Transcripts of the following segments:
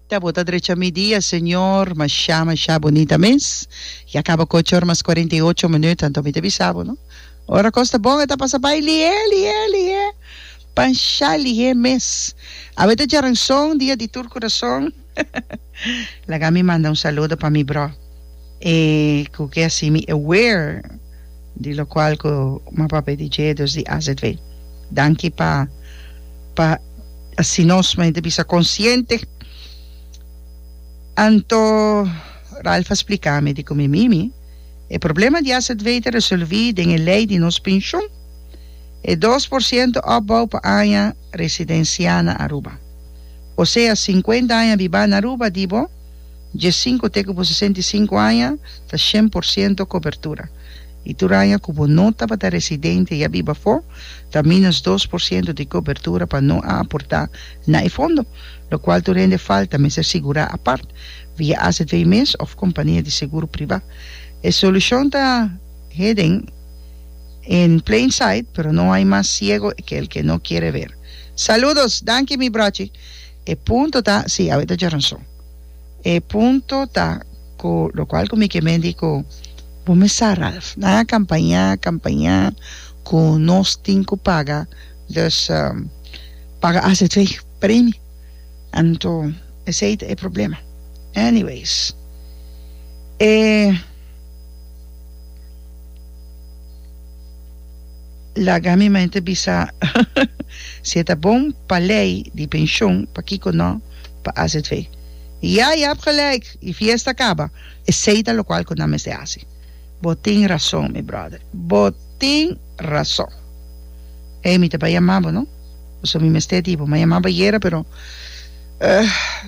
Ta bota drecha mi dia Señor. Mashá mashá bonita mes. Ya caba cu ocho or mas cuarenta y ocho minut anto mi ta bisa bo no ora cos ta bon e ta pasa bay lihe lihe lihe panshá lihe mes. Awe ta djaranzon dia di tur curason. Laga mi manda un saludo pa mi broh e cu ke así mi aware di locual cu ma papé di dje dos di azv. Danki pa pa así nos mei ta bisa consciente. Anto Ralph a splica mi di cu mi mimi e problema di azv ta resolvi den e ley di nos pensioen e dos por ciento opbouw pa aña residencia na Aruba. osea sinkuenta aña bibá na Aruba di bo diesinku te ku bo sesenta i sinku aña ta shen por siento kobertura i tur aña ku bo no tabata residente i a biba afó ta minus dos por siento di kobertura pa no a aportá na e fondo lokual tur hende falta mester sigurá apart via azv mes òf kompania di seguro pribá. E solushon ta hidden in plain sight pero no hay mas siego ke el ke no kiere ver. Saludos! Danki mi brochi. E punto ta, si, awe ta dje rason. E punto ta cu locual cu mi ke menti cu bo mes sa Ralph, nan a campaña, campaña cu nos tin cu paga, dus paga azv per imi. Anto esey ta e problema. Anyways, e. Laga mi maña ta bisa si e ta bon pa lei di penshon pakiko no pa azv i ya yap gelijk e fiesta kaba esei ta lokual ku nan mester hasi bo tin rason mi brother bo tin rason ey mi ta bai yama bo no paso mi mester di bo mi a yama bo ayera pero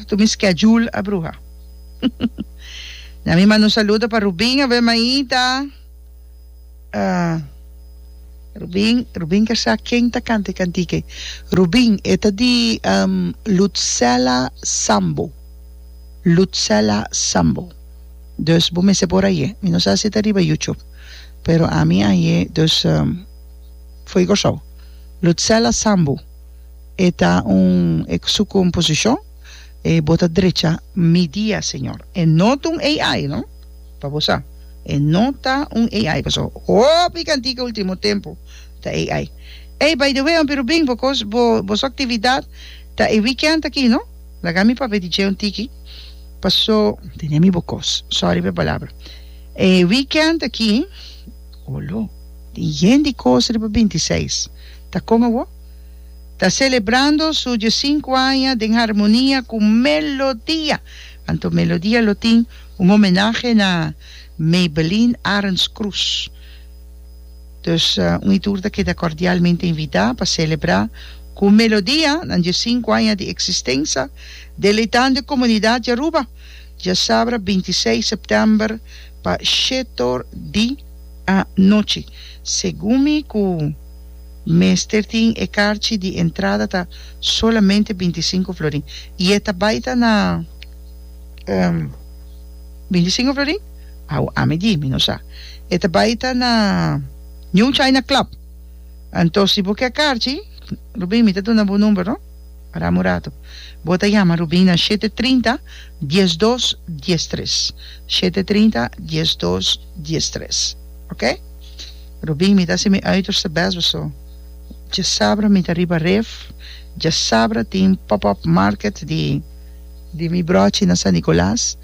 tur mi schedule a bruha na mi manda un saludo pa Rubin awe maita. Rubin, Rubin ker sa ken ta canta e cantica ei. Rubin, e ta di Lutzela Sambo, Lutzela Sambo. Dus bo mester por aye. Mi no sa si ta riba YouTube, pero ami aye, dus foi Kòrsou. Lutzela Sambo, e ta un, e su composicion, e bo ta drecha mi dia, Señor. E no ta un AI no. Pa bo sa, e no ta un AI, paso hopi kantika ultimo tempu ta AI. Ey, by the way, Hompi Rubin, bo kos, bo, boso aktividat ta e weekend aki, no? Laga mi papia di dje un tiki, paso. Tene mi bo kos, sorry pa e palabra. E weekend aki, olo, tin yen di kos riba binti seis, ta kon awo? Ta selebrando su dje sinku aña den harmonia ku Melodia, anto Melodia lo tin. Un homenahe na Maybelline Arends Cruz. Dus un y tur ta keda cordialmente invita pa celebra cu Melodia nan diescinco aña di existensa, deleitando e comunidad di Aruba diasabra binti i seis september pa shetor di anochi. Segun mi cu mester tin e carchi di entrada ta solamente binti i cinco florin y e ta bay ta na. Ehm, mi di singo Florin? Awo ami di, mi no sa. E ta bai ta na New China Club. Anto si bo ke karchi, Rubin, mi ta duna bo number, no? Aram un ratu. Bo ta yama Rubin na shete trinta, dies dos, dies tres. Shete trinta, dies dos, dies tres. Ok? Rubin, mi ta hasi mi uiterste best bo so. Djasabra mi ta riba ref, djasabra tin pop-up market di. di mi brochi na San Nicolas,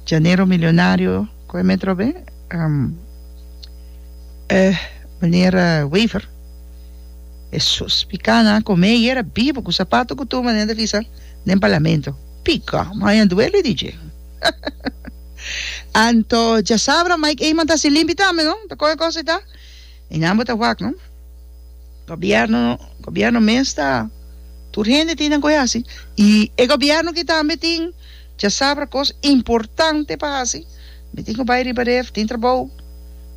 Llanero Milionario, koe me trobe? Um, eh, meneer Wever. Hesus, pika nan a kome i era bibu ku sapato ku tuma den devisa den parlamento. Pika, maña duele di dje. Anto, djasabra Mike Eman ta hasi limpi tambe, no? Ta kohe kos ei ta. E nan bo ta wak no. Gobierno gobierno mes ta tur hende tin nan koe hasi y e gobierno ki tambe tin chasabra cos importante pa hasi mi tin cu bay riba de tin trabou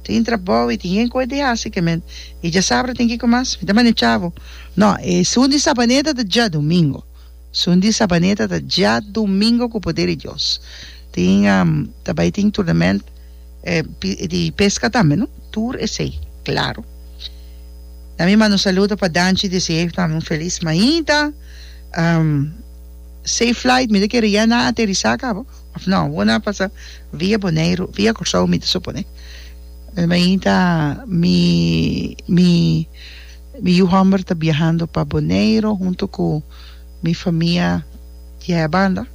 tin trabou y tin yen coe di hasi ke men y chasabra tin kico mas mi ta manda chavo no e sun di sabaneta ta dia domingo sun di sabaneta ta dia domingo cu poder di Dios tin ta bay tin turnament. di pesca tambe no tur esey claro ta mi manda un saludo pa Danchi deseayo tambe un feliz mañita um safe flight mi ta kere ya na aterisa cabo of no awor na pasa via Boneiru via Cursao mi ta supone mi mañita mi mi mi yu homber ta biahando pa Boneiru hunto cu Mi famia diahe banda,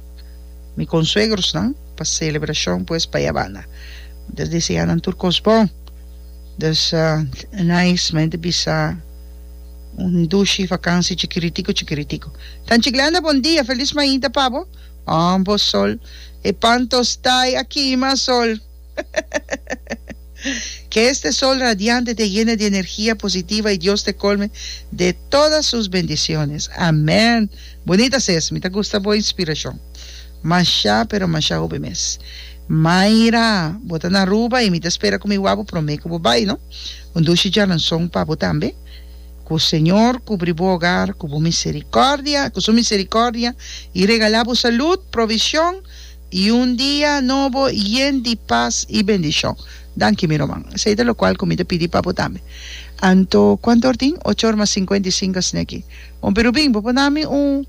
mi konsuegrosnan pa selebrashon pues pa e banda. Bo deseanan tur kos bon. Dus nice men ta bisa un dushi vakansi chikiritiku chikiritiku. Tanchi Glenda bon dia, felis mainta pa bo. Ambos sol, e pan tostá i a kima sol. Que este sol radiante te yene di energia positiva y Dios te colme de toda sus bendiciones. Amen! Bunita ses, mi ta gusta bo inspiracion. Masha pero masha hopi mes. Mayra, bo ta na Aruba y mi ta spera cu mi wabo prome cu bo bay, no? Un dushi djalanzon pa bo tambe. Cu Señor cubri bo hogar cu bo misericordia, cu su misericordia y regala bo salud, provision, y un dia nobo yen di paz y bendicion. Danki mi roman. Esei ta locual cu mi ta pidi pa bo tambe. Anto, cuanto or tin? Ocho or mas cincuenta y cinco asina aki. Bon, pero bin, bo por na mi un,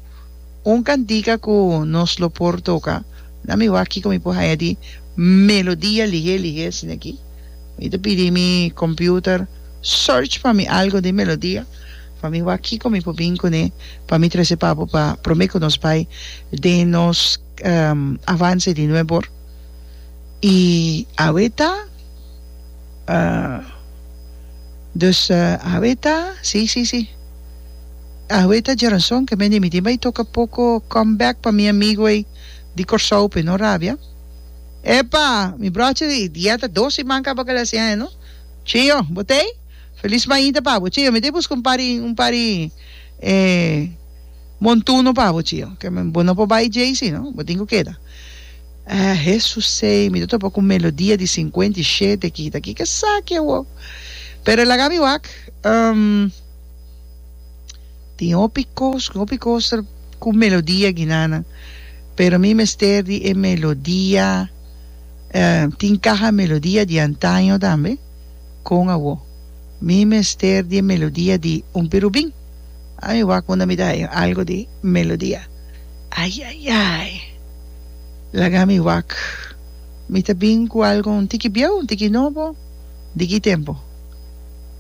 un cantica cu nos lo por toca. Na mi wak kico mi por haya di melodia lihe, lihe asina aki. Mi ta pidi mi computer, search pa mi algo den melodia, pa mi wak kico mi por bin cune, pa mi trece pa bo pa prome cu nos bay den nos. avance di nueve or y aweta dus aweta si si si aweta djerazon ke men di mitin bay toca poco come back pa mi amigo ey di Corsou pe no rabia epa mi broche di dieta dos siman caba cala así aña no chio bo tey feliz mainta pa bo chio mi tey busca un pari un pari. Montuno pa bo chio. Ke men bo no por bai djei si no, bo tin ku keda. Ah, Hesusey, mi ta topa ku melodia di sinkuenta i shete kita. Kiko esaki awo? Pero e laga mi wak. Um, tin hopi kos, ku hopi koster ku melodia ginanan, pero mi mester di e melodia, eh, tin kaha melodia di antaño tambe. Kon awo? Mi mester di e melodia di un pirubin. Ai wak unda mi ta haña algu di melodia. Ayayay! Laga mi wak. Mi ta bin ku algu un tiki bieu, un tiki nobo. Di ki tempu?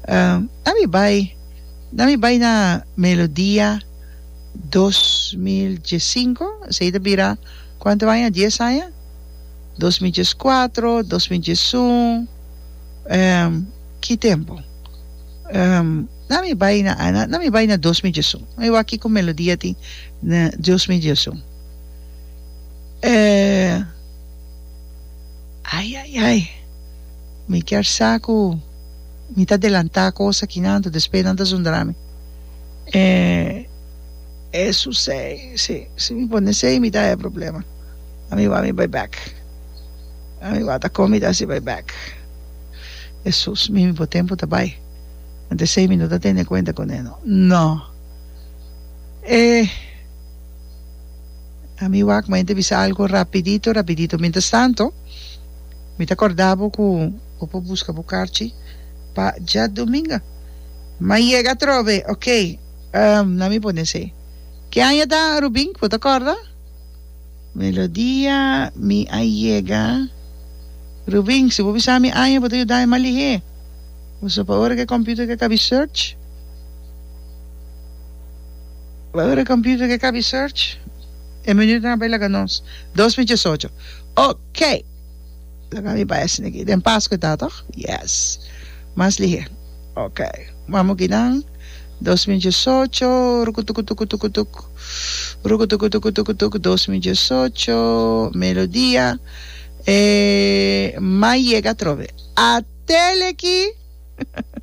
Na mi bai, na mi bai na Melodia dos mil dies sinku, esei ta bira kuantu aña? Dies aña? Dos mil dies kuatro, dos mil dies un, ki tempu? Na mi bai na Ana, na mi bai na Dos mi Jesu. Na mi bai kiko melodia tin na Dios mi Jesu. Eh ai ai ai mi kier sa ku mi ta delanta kos aki nan anto despues nan ta zundra mi eh eso sei si si mi pone sei mi ta haya problema a mi wou mi bai bek a mi wou ta kon mi ta hasi bai bek Hesus mi mi bo tempo ta bai. Anto esei mi no ta tene kuenta ku neno. No. E a mi wak mei ta bisa algu rapidito rapidito. Mientras tanto mi ta korda bo ku bo por buska bo karchi pa djadominga. Mei yega atrobe, okey, um nan mi pone esei. Ki aña ta, Rubin, bo ta korda? Melodia, Mi a yega, Rubin, si bo bisa mi aña bo ta yuda mi malihé. Boso pa ora cu e computer ke cabi search. Pa ora e computer ke cabi search. E menu den a bay laga nos. Dos mi dies ocho. Ok! Laga mi pa esne aki. Den Pasco e ta toch? Yes. Mas lihe. Ok. Mamo aki nan. Dos mi dies ocho. Rukutukutukutukutuk. Rukutukutukutukutuk. Dos mi dies ocho. Melodia. E mai yega atrobe. A tele ki!